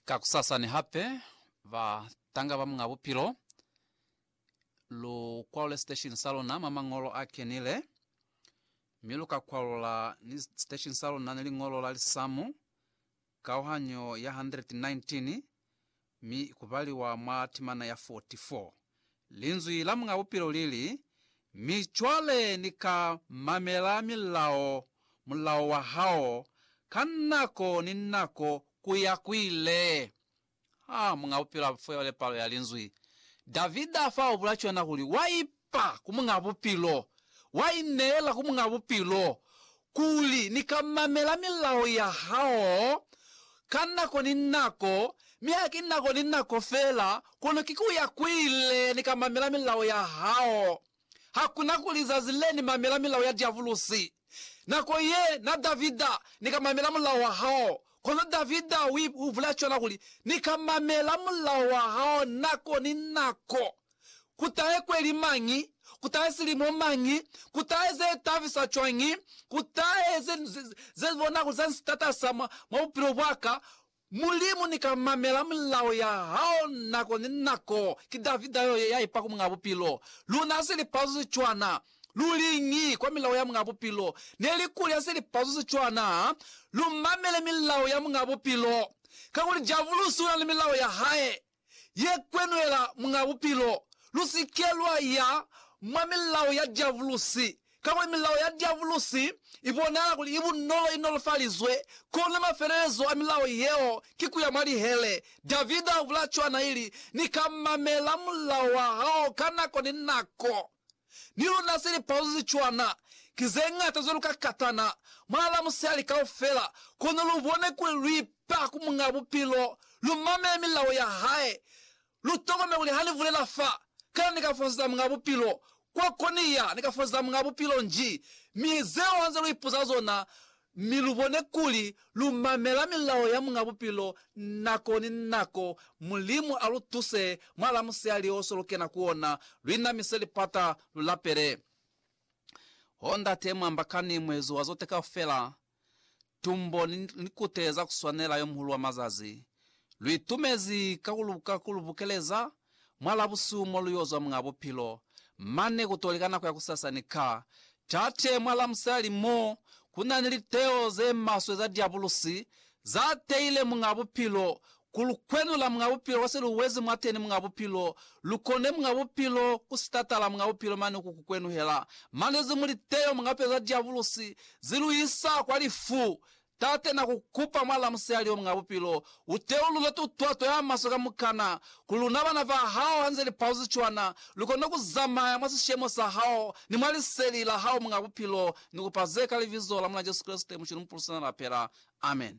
Kakusasani hape, ba tanga ba Muñ'a Bupilo, lu kwalule siteshini sa luna mwa Mañolo a Kenile, mi lu ka kwalula ni siteshini sa luna ni liñolo la lisamu, kauhanyo ya 119, Mi ku baliwa mwa timana ya 44, Linzwi la Muñ'a Bupilo li li, Mi cwale ni ka mamela milao, mulao wa hao, ka nako ni nako ku ya ku ile. Ha Muñ'a Bupilo a fo yole palo ya Linzwi, Davida fa ubula cwana kuli, Wa ipa! Fa ku Muñ'a Bupilo. Wa ineela ku Muñ'a Bupilo kuli ni ka mamela milao ya hao ka nako ni nako, mi haki nako ni nako feela, kono ki ku ya kuile ni ka mamela milao ya hao. Hakuna kuli zazi le ni mamela milao ya diabulusi. Nako ye na Davida, ni ka mamela mulao wa hao. Kono Davida u bulela cwana kuli, Ni ka mamela mulao wa hao nako ni nako. Ku tahe kweli mañi? Ku tahe silimo mañi? Ku tahe ze tabisa cwañi? Ku tahe ze, ze, ze bona kuli za ni sitatasa mwa, mwa bupilo bwaka. Mulimu, ni ka mamela milao ya Hao nako ni nako. Ki Davida yo, ye ya ipa ku Muñaa Bupilo. Luna ha si lipazu ze cwana. Lu liñi kwa milao ya Muñaa Bupilo? Neli kuli ha si lipazu ze cwana, ha lu mamele milao ya Muñaa Bupilo. Kakuli Diabulusi una ni milao ya hae. ye kwenwela mwa bupilo, lu si ke lwa ya mwa milao ya diabulusi, kakuli milao ya diabulusi i bonahala kuli i bunolo, i nolofalizwe. Kono mafelelezo a milao yeo ki ku ya mwa lihele. Davida a bula cwana, ili, Ni ka mamela mulao wa hao ka nako ni nako. Ni luna se lipauzo ze cwana ki ze ñata cwalo ka katana mwa la musihali kaufela, kono lu bone kuli lu ipa ku Muñ'a Bupilo, lu mamele milao ya hae, lu tokomele kuli ha ni bulela fa, kana ni ka fosetsa Muñ'a Bupilo kwa ko ni ya, ni ka fosetsa Muñ'a Bupilo nji, mi zeo ha nze lu ipuza zona, Mi lubone kuli lumamela milao ya Muñ'a Bupilo nako ni nako. Mulimu alutuse mwa lamusihali oso lukena ku ona, luinamise lipata, lulapele. Oh, Ndate, mwamba kani, Muezi wa zote kaufela, Tumbo ni likute za kuswanela, Yomuhulu wa mazazi, Luitumezi ka kulubukeleza Mwa Labusuku mo lu yo zwa mwa bupilo, mane ku to li ka nako ya kusasani ka Tate mwa Lamusali mo ku na ni liteo ze maswe za Diabulusi za teile mwa bupilo ku lu kwenula mwa bupilo kwa se lu wezi mwateni mwa bupilo, lu kone mwa bupilo ku sitatala mwa bupilo mane ku ku kwenuhela mane ze mu liteo mwa pelo za Diabulusi ze lu isa kwa lifu Tate, na ku kupa mwala musihali omuñ'a bupilo, u teulule tutwato ya maswe kamukana, kuli luna bana ba Hao, ha nze li pauzi cwana, lu kone ku zamaya mwa sishemo sa Hao ni mwa Liseli la Hao, Muñ'a Bupilo. Ni kupa ze ka Libizo la Mul'a Jesu Kreste, Muculu Mupulusi na Lapela. Amen.